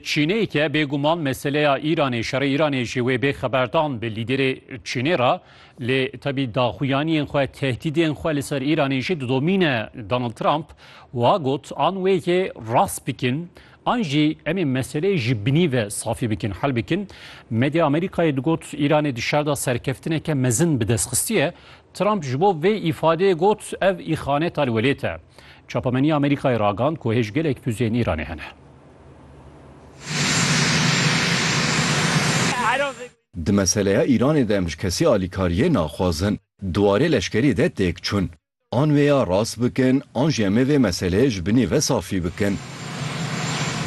Çînê ke bêguman meseleya Îranê, şerê Îranê ji wê bê xeberdan bi lîderê Çînê re lê tevî daxuyaniyên xwe, tehdîdên xwe li ser Îranê jî didomîne. Donald Trump wiha got, An wê yê rast bikin an jî em ê meseleyê ji binî ve safî bikin, hel bikin. Medya Amerîkayê digot Îranê di şer de serkeftineke mezin bi dest xistiye. Trump ji bo vê îfadeyê got, Ev îxaneta li welêt e. Çapemeniya Amerîkayê ragand ku hêj gelek fuzeyên Îranê hene. Di meseleya Îranê de em ji kesî alîkariyê naxwazin di warê leşkerî de têk çûn. An wê ya rast bikin an jî em ê vê meseleyê ji binî ve safî bikin.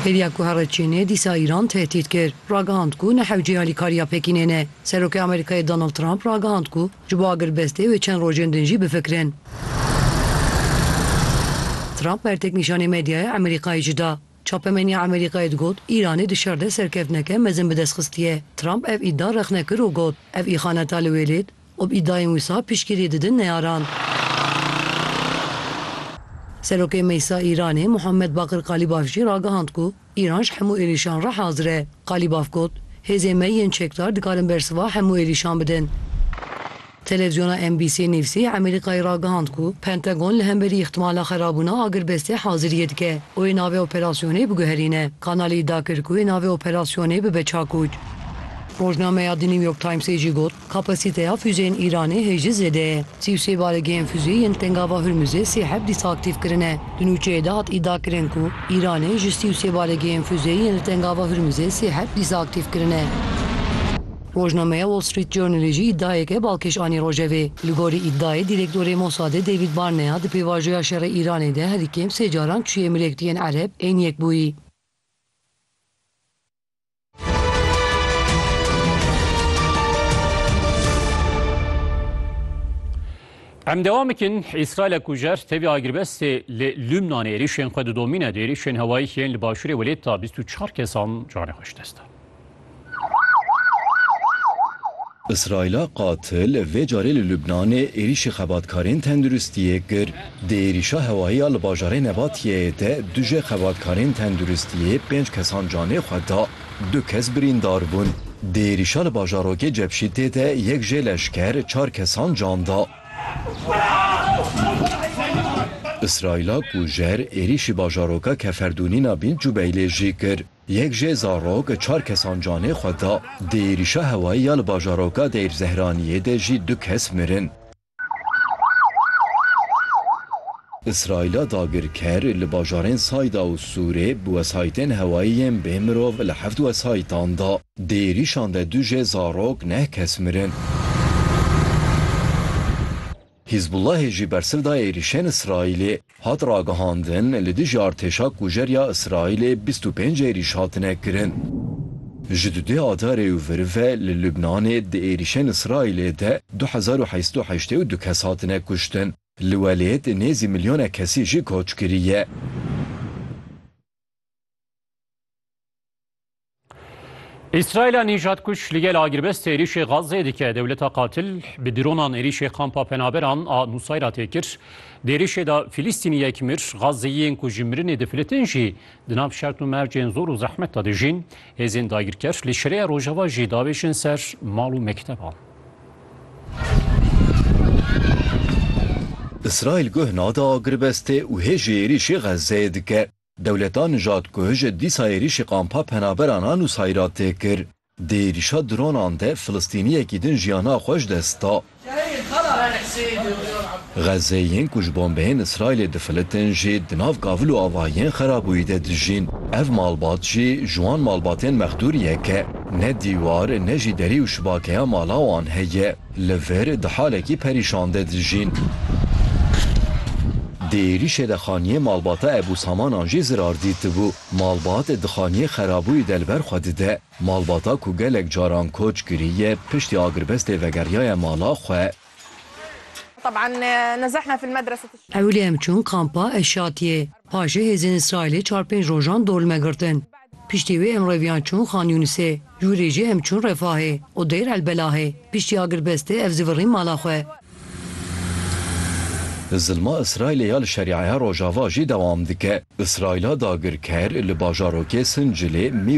Hêviya ku here Çînê dîsa Îran tehdît kir, ragihand ku ne hewceyî alîkariya Pekînê ne. Serokê Amerîkayê Donald Trump ragihand ku Ji bo agirvestê wê çend rojên din jî bifikirin. Trump bertek nîşanê medyaya Emerîkayê jî da. Çapemeniya Emerîkayê digot Îranê di şer de serkeftineke mezin bi dest xistiye. Trump ev îda rexne kir û got, Ev îxaneta li wêlêt û bi îdayên wisa piştgiriyê didin neyaran. Serokê Meclisa Îranê Muhammed Bakir Kalîbaf jî ragihand ku Îran ji hemû êrîşan re hazir e. Qalîbaf got, Hêzên me yên çekdar dikarin bersiva hemû êrîşan bidin. Televîzyona NBC'ê nivîsî Amerîkayê ragihand ku Pentagon li hemberî îhtimala xerabûna agirbestê haziriyê dike û wê navê operasyonê biguherîne. Kanalê îdia kir ku wê navê operasyonê bibe Çakûç. Rojnameya The New York Times'ê jî got, Kapasîteya fûjeyên Îranê hê jî zêde ye. Sî û sê baregehên fûjeyî yên li Tengava Hurmuzê sê heb dîsa aktîf kirine. Di nûçeyê de hat îdia kirin ku Îranê ji sî û sê baregehên fûjeyî yên li Tengava Hurmuzê sê heb dîsa aktîf kirine. Rojnameya Wall Street Journalê jî îdiayeke balkêş anî rojevê. Li gorî îdiayê Dîrektorê Mosadê David Barnea di pêvajoya şerê Îranê de herî kêm sê caran çûye mirêk di yên Ereb ên Yekbûyî. Em devam bikin Îsraîlê ku jer tevî agirbestê li Lûbnanê êrîşên xwe didomîne di êrîşên hewayî yên li başûrê welêt da bîst û çar kesan canê xwe ji dest dan. Îsraîla qatil vê carê li Lûbnanê êrîşê xebatkarên tenduristiyê kir. Di êrîşa hewayî ya li bajarê Nebatiyeyê de du jê xebatkarên tenduristiyê pênc kesan canê xwe da, du kes birîndar bûn. Di êrîşa li bajarokê Cebşîtê de yek jê leşker çar kesan can da. Îsraîla kujer êrîşî bajaroka Keferdûnîna Bint Cubeylê jî kir. Yek jê zarok çar kesan canê xwe da. Di êrîşa hewayî ya li bajaroka Deyr Zehraniyê de jî du kes mirin. Îsraîla dagirker li bajarên Sayda û Sûrê bi wesayîtên hewayî yên bê mirov li heft wesayîtan da. Di êrîşan de du jê zarok neh kes mirin. Hîzbûllahê jî bersiv da êrîşên Îsraîlê. Hat ragihandin, li dijî artêşa kujerya Îsraîlê bîst û pênc êrîş hatine kirin. Ji du dê adarê û vir ve li Lubnanê di êrîşên Îsraîlê de du hezar û heyî sed û heştê û du kes hatine kuştin. Li welêt nêzî milyonek kesî jî koç kiriye. İsrail nîjat kuş li gel agirbestê êrîşê Gazê dike dewleta qatil bi dronan êrîşê kampa penaberan a Nusayra tê kir. Di êrîşê de Filîstînî yek mir, Gazeyiyên ku ji mirinê difilitin jî di nav şert û mercên zor û zehmet de dijîn. Hêzên dagirker li şireya rojava jî davêjin ser mal û mekteban. İsrail guh nada agirbestê û hê ji êrîşê Gazeyê dike. Dewleta Nijad ku hije dîsa êrîşê kampa penaberan a Nusayra tê kir, di êrîşa dronan de Filistîniyekî din jiyana xwe ji dest da. Xezeyên ku ji bombeyên Îsraîlê difilitin jî di nav gavil û avahiyên xerabûyî de dijîn. Ev malbat jî ji wan malbatên mexdûriyek e. Ne dîwar ne jî derî û şibakeya mala wan heye. Li vir di halekî perîşan de dijîn. Di êrîşê de xaniyê malbata Ebû Samanan jî zirar dîtibû. Malbat di xaniyê xerabûyî de li ber xwe dide. Malbata ku gelek caran koç kiriye, piştî agirbestê vegeriyaye mala xwe. Ewilî em çûn kampa Eşatiyê. Paşê hêzên Îsraîlê çar pênc rojan dolme girtin. Piştî wê em reviyan çûn Xan Yûnisê, ji wî rê jî em çûn Refahê û Dêr El Belahê. Piştî agirbestê ev zî virîn mala xwe. Zilma Îsraîlê ya li Şerîeya Rojava jî dewam dike. Îsraîla dagirker li bajarokê Sincilê, Mî,